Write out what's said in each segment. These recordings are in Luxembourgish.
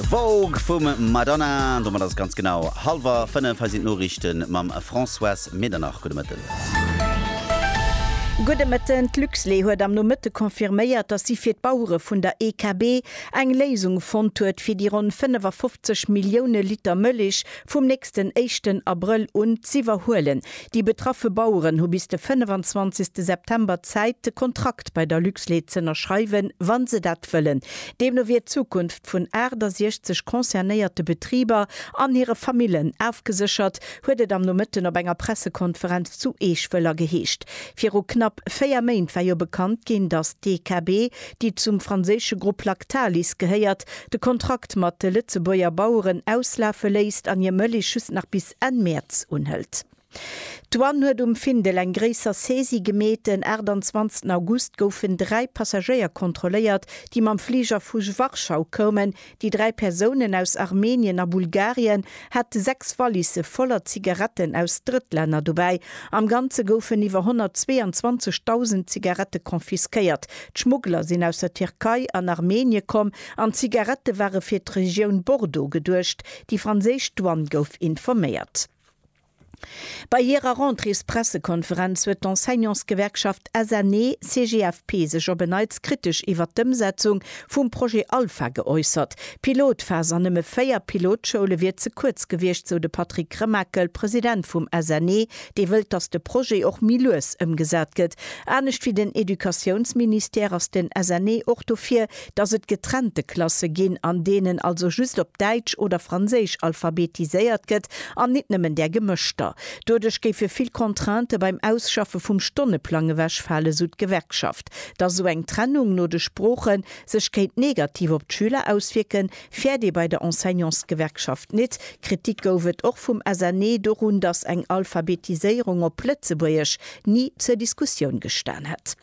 Vogue vum Madonna. Domat ass et ganz genau hallwer fënnef. Hei sinn d'Noriichte mam Françoise Medernach. Gudde Mëtten. Gudde Mëtten. D'Luxlait huet am Nomëtte confirméiert, datt si fir d'Bauere vun der EKB eng Léisung fonnt huet, fir déi ronn 55 Millioune Liter Mëllech vum nächsten éischten Abrëll un z'iwwerhuelen. Déi betraffe Baueren hu bis de 25 September Zäit de Kontrakt bei der Luxlait z'ënnerschreiwen, wa se dat wëllen. Deemno wier d'Zukunft vun 68 concernéierte Betriber an hire Famillen afgeséchert, huet et am Nomëtten op enger Pressekonferenz zu Eech-Wëller geheescht. Viru knapp 4 Méint war jo bekannt ginn, datt d'EKB, déi zum franséische Grupp Lactalis gehéiert, de Kontrakt mat de Lëtzebuerger Baueren auslafe léisst an hir Mëlich just nach bis Enquête Enn Mäerz unhëlt. D'Douane huet um Findel eng gréisser Saisie gemeet. En 28 August goufen dräi Passagéier kontrolléiert, déi mam Fliger vu Warschau koumen. Déi dräi Persounen, aus Armenien a Bulgarien, hate sechs Wallisse voller Zigaretten aus Drëttlänner dobäi. Am Ganze goufen iwwer 122.000 Zigarette confisquéiert. D'Schmuggler sinn aus der Tierkei an Armenie komm an d'Zigarette ware fir d'Regioun Bordeaux geduecht. Déi franséisch Douane gouf informéiert. Bei hirer Rentréespressekonferenz huet d'Enseignantsgewerkschaft SNE-CGFP sech op en Neits kritesch iwwert d'Ëmsetzung vum Projet Alpha geäussert. D'Pilotphas an nëmme 4 Pilotschoule wier ze kuerz gewiescht, sou de Patrick Remakel, President vum SNE, dee wëllt, datt de Projet och méi lues ëmgesat gëtt. Anescht wéi den Educatiounsministère ass den SNE och dofir, dass et getrennte Klasse ginn, an deenen also just op Däitsch oder Franséisch alphabetiséiert gëtt an nit nëmmen där gemëschter. Doduerch géife vill Contraintë beim Ausschaffe vum Stonneplang ewechfalen, sou d'Gewerkschaft. Dass esou eng Trennung no de Sprooche sech kéint negativ op d'Schüler auswierken, fäert ee bei der Enseignantsgewerkschaft nit. Kritik gouf et och vum SNE dorun, dass eng Alphabetiséierung op Lëtzebuergesch ni zur Diskussioun gestan hätt.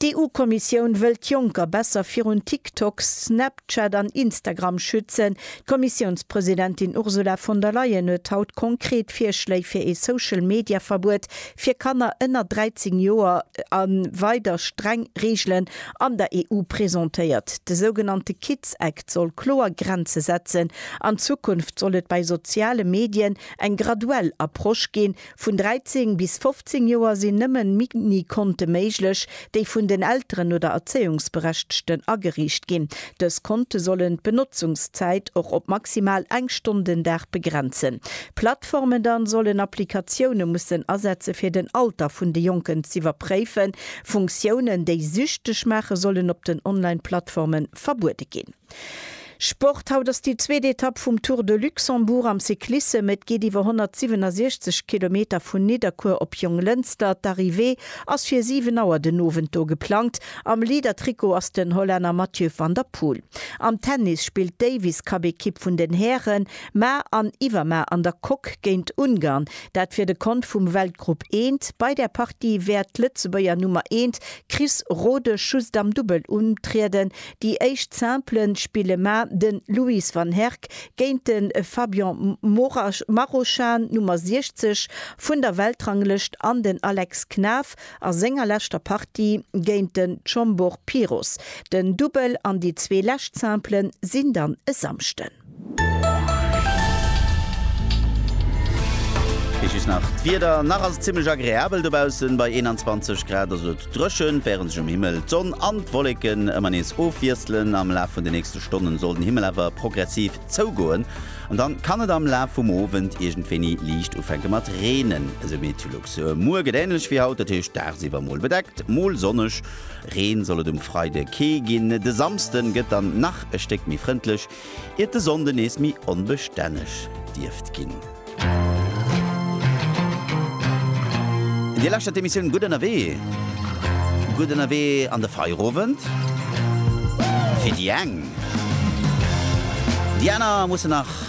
D'EU-Kommissioun wëll d'Jonker besser virun TikTok, Snapchat an Instagram schützen. D'Kommissiounspresidentin Ursula von der Leyen huet haut konkret Virschléi fir ee Social-Media-Verbuet fir Kanner ënner 13 Joer a weider streng Reegelen an der EU presentéiert. De sougenannte Kids Act soll kloer Grenze setzen. An Zukunft soll et bei soziale Medien eng graduell Approche ginn, Vun 13 bis 15 Joer sinn nëmmen Mini-Konte méiglech, déi vun den Elteren oder Erzéiungsberechtechten ageriicht ginn. Dës Konte sollen d'Benotzungszäit och op maximal eng Stonn den Dag begrenzen. Plattformen dann sollen Applikatioune mussen asetze fir den Alter vun de Jonken z'iwwerpréifen. Funktiounen, déi süchteg maachen, sollen op den Online-Plattformen verbuede ginn. Sport, Haut ass déi zweet Etapp vum Tour de Luxembourg am Cyclissem. Et geet iwwer 167 Kilometer vun Nidderkuer op Jonglënster. D'Arrivée ass fir 7 Auer den Owend do geplangt. Am Leader-Trikot ass den Hollänner Mathieu van der Poel. Am Tennis spillt d'Davis Cup-Ekipp vun den Hären ma an iwwer ma an der Coque géint Ungarn, dat fir de Kont vum Weltgrupp eent. Bei där Partie wäert d'Lëtzebuerger Nummer eent Chris Rodesch just am Dubbel untrieden. Déi éischt Simple spille mar den Louis Van Herck géint den Fabian Marochan, Nummer 60 vun der Weltranglëscht, an den Alex Knaff a senger leschter Partie géint den Chombor Piros. Den Dubbel an déi zwee lescht Simplen sinn dann e Samschden. Hei just nach d'Wieder, nach ass et zimmlech agreabel dobaussen, bei 21 Grad ass et dréchen, wärend sech um Himmel d'Sonn an d'Wolleken ëmmer nees ofwiesselen. Am Laf vun de nächste Stonnen soll den Himmel awer progressiv zougoen an dann kann et am Laf vum Owend iergendwéini liicht ufänke mat reenen, esou Meteolux. Muer gëtt änlech wéi haut, dat heescht dagsiwwer mol bedeckt, mol sonneg. Reen soll et um Freide kee ginn. De Samsden gëtt dann nach e Stéck méi frëndlech, iert de Sonnde nees méi onbestänneg dierft ginn. Dir lauschtert d'Emissioun Gutt ënnerwee. Gutt ënnerwee an de Feierowend. Fir déi eng. Déi aner mussen nach